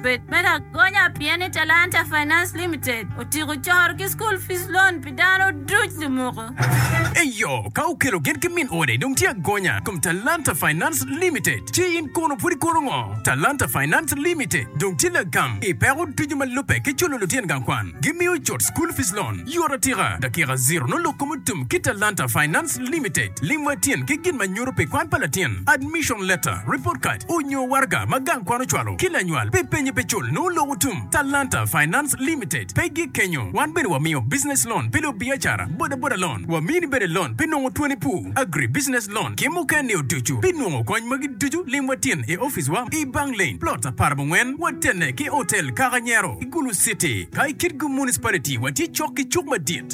Bed me lagonya pien ni Talanta Finance Limited otyeko coro ki School Fees Loan pi dano duc lumuko. Eyo, ka okelo gin ki min ode dong tye agonya i kom Talanta Finance Limited. Ci in kono pud ikono ngo? Talanta Finance Limited dong tye lagam i peko ducu ma lubbe ki culo lutyen gang kwan. Gimiyo cut School Fees Loan yot atika, dakika ziro nongo lok kom otum ki Talanta Finance. Trust Limited, lim wa tyen ki gin ma nyuto pi kwan pa latin, admission letter, report card, onyo waraga ma gang kwan ocwalo ki lanywal pi penye pe cul nongo lok otum. Talanta Finance Limited pe gik kenyo, wan bene wa miyo business loan pi lub biacara, boda boda loan, wa mini bene loan pi nongo twoni pur, agri business loan ki muken ni oducu. Pi nongo kony magi ducu lim wa tyen i office wa i Bang Lane, plot apar mungwen, wa tenne ki hotel Kaka Nyero, i Gulu City. Ka i Kitgum Municipality wa tye cok ki cuk madit.